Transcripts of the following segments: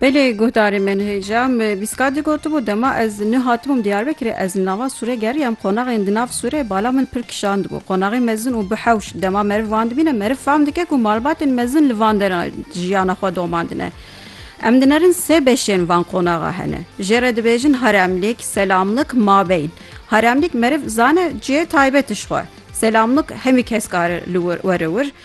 Belê guhdarê min hêja me bîska digotibû dema ez ni hatibûm Diyarbekirê ez li nava Sûrê geriyam qonaxên di nav Sûrê bala min pir kişandibû qonaxê mezin û bi hewş dema meriv van dibîne meriv fam dike ku malbatên mezin li van dera jiyana xwe domandine. Em dinerin sê beşên van qonaxa hene. Jê re dibêjin haremlik, selamlik, mabeyn. Haremlik meriv zane cihê taybet ji xwe. Selamlik hemî kes kare li wir were wir.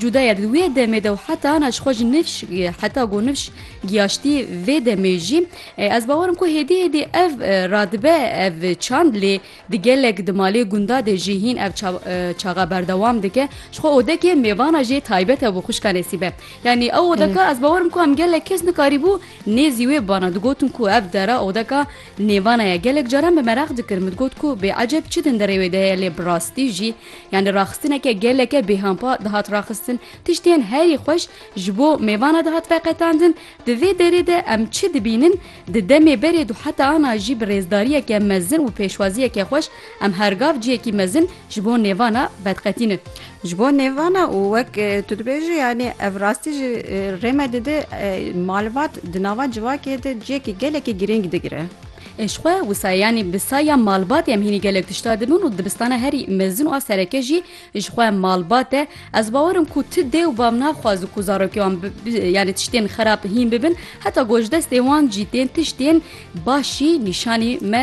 Cuda ye di wê demê de û heta na ji xwe ji nifş heta ku nifş giyaştî vê demê jî ez bawer im ku hêdî hêdî ev radibe ev çand lê di gelek di malê gunda de jî hîn ev çaxa berdewam dike ji xwe odekê mêvana jê taybet e bo xwişka nesîbe yanî ew odeka ez bawer im ku em gelek kes nikarîbû nêzî wê bana digotin ku ev dera odeka nêvana ye gelek caran bi mereq dikir min digot ku bêeceb çi din derê wê de heye lê bi rastî jî Yanî raxistineke geleke bêhampa dihat raxistin, tiştên herî xweş ji bo mêvana dihat veqetandin, di vê derê de em çi dibînin, di demê berê du heta ana jî bi rêzdariyeke mezin û pêşwaziyeke xweş em her gav ciyekî mezin ji bo nêvana vediqetînin. Ji bo nêvana û wek tu dibêjî yanî ev rastî jî rê me dide malbat di nava civakê de ciyekî gelekî girîng digire. Ê ji xwe wisa ye yanî bi saya malbatê em hînî gelek tişta dibin û dibistana herî mezin û a sereke jî ji xwe malbat e. Ez bawer im ku ti dê û bav naxwazin ku zarokê wan yanî tiştên xerab hîn bibin heta ku ji destê wan jî tên tiştên baş jî nîşanî me